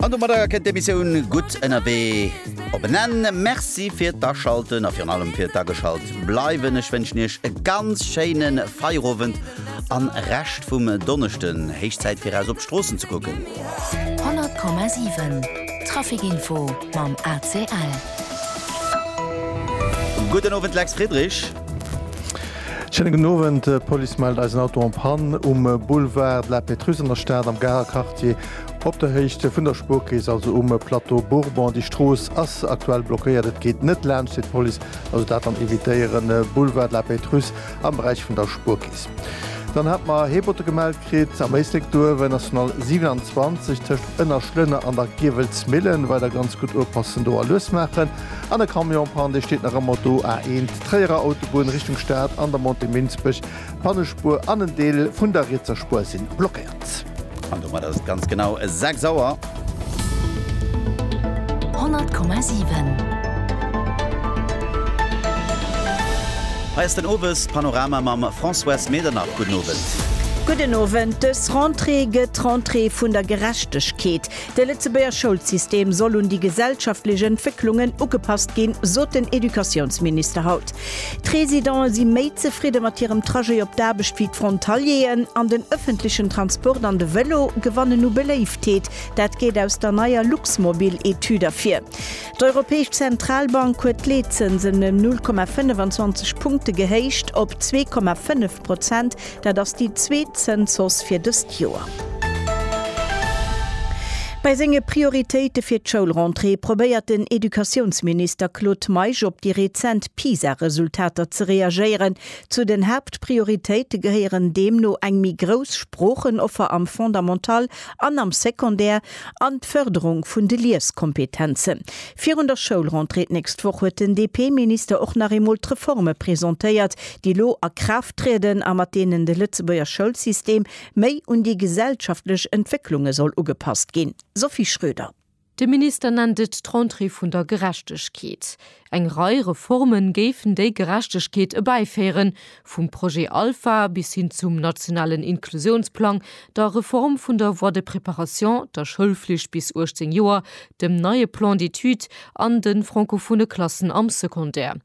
An domadder kënnt d'Emissioun Gutt ënnerwee op en Enn. Merci fir d'Aschalten a virun allem fir d'Ageschalt bleiwen. Ech wënschen Iech e ganz schéine Feierowend a Rescht vum Donneschden. Héich Zäit fir eraus op d'Stroossen ze kucken. 100,7 Traficinfo mam ACL. Gudden Owend Lex Friedrich. Schéine gudden Owend, D'Police mellt eis en Auto en Panne um Boulevard de la Pétrusse an der Stad am Garer Quartier op der Héicht vun der Spuerkeess, also um Plateau Bourbon. Déi Strooss ass aktuell blockéiert, et geet net laanscht, seet d'Police. Also dat dann evitéieren, Boulevard de la Pétrusse am Beräich vun der Spuerkeess. Dann hat mer Heebotte gemellt. Kritt am Éislek Duerwen, National 27, tëscht Ënnerschlënner an der Giewelsmillen, weider ganz gutt upassen do a lues maachen. An e Camion, Panne, dee steet nach ëmmer do, A1, Tréierer Autobunn, Richtung Stad, an der Montée Minsbech, Pannespuer an en Deel vun der rietser Spuer sinn blockéiert. An domat ass et ganz genau 6 Auer. 100,7. Hei ass den Owespanorama mam Françoise Medernach. Gudden Owend. Gudden Owend. Dës Rentrée gëtt d'Rentrée vun der Gerechtegkeet. De Lëtzebuerger Schoulsystem soll un déi gesellschaftlech Entwécklungen ugepasst ginn, sot den Educatiounsminister haut. D'Residente si méi zefridde mat hirem Trajet op d'Aarbecht wéi d'Frontalieren an den ëffentlechen Transport an de Vëlo gewannen u Beléiftheet. Dat geet aus der neier Luxmobil-Etüd ervir. D'Europäesch Zentralbank huet d'Leetzënsen ëm 0,25 Punkte gehéicht op zwee Komma fënnef. Prozent, dat ass déi zweet Zënshausse fir dëst Joer. Bei senge Prioritéite fir d'Schoulrentrée probéiert den Educatiounsminister Claude Meisch op déi rezent PISA-Resultater ze reagéieren. Zu den Haaptprioritéite gehéieren deemno eng méi grouss Sproochenoffer am Fondamental an am Secondaire an d'Fërderung vun de Lieskompetenzen. Virun der Schoulrentrée d'nächst Woch huet den DP-Minister och nach eemol d'Reforme presentéiert, déi elo a Kraaft trieden a mat deenen de Lëtzebuerger Schoulsystem méi un déi gesellschaftlech Entwécklunge soll ugepasst ginn. Sophie Schröder. De Minister nennt et d'Rentrée vun der Gerechtegkeet. Eng Rei Reforme géifen déi Gerechtegkeet erbäiféieren, Vum Projet Alpha bis hin zum nationalen Inklusiounsplang, der Reform vun der Voie de préparation, der Schoulflicht bis 18 Joer, dem neie Plan d'études an de francophone Klassen am Secondaire.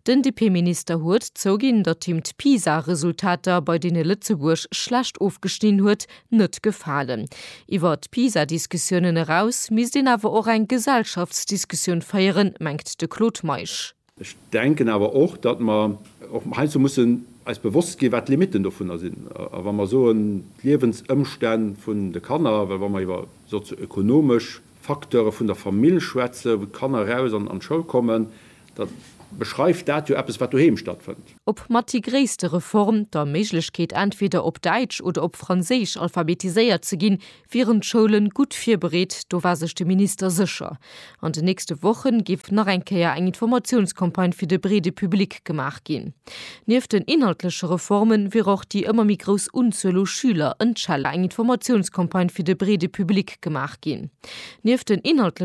Den DP-Minister huet zouginn, datt him d'PISA-Resultater, bei deene Lëtzebuerg schlecht ofgeschnidden huet, net gefalen. Iwwer d'PISA-Diskussiounen eraus misst een awer och eng Gesellschaftsdiskussioun féieren, mengt de Claude Meisch. Ech denken awer och, datt mer och heiansdo mussen eis bewosst ginn, wat d'Limitten dovunner sinn. A wa mer soen, d'Liewensëmstänn vun de Kanner, well wa mer iwwer sozio-ökonomesch Facteure vun der Famill schwätzen, wou d'Kanner eraus an d'Schoul kommen, da beschreift dat jo eppes, wat doheem stattfënnt. Ob mat déi gréisste Reform, der Méiglechkeet entweder op Däitsch oder op Franséisch alphabetiséiert ze ginn, wieren d'Schoulen gutt virbereet, do war sech de Minister sécher. An de nächste Wochen géif nach eng Kéier eng Informatiounscampagne fir de breede Public gemaach ginn. Nieft den inhaltleche Reformen wier och déi ëmmer méi grouss Unzuel u Schüler en Chal eng Informatiounscampagne fir de breede Public gemaach ginn. Nieft den inhaltleche.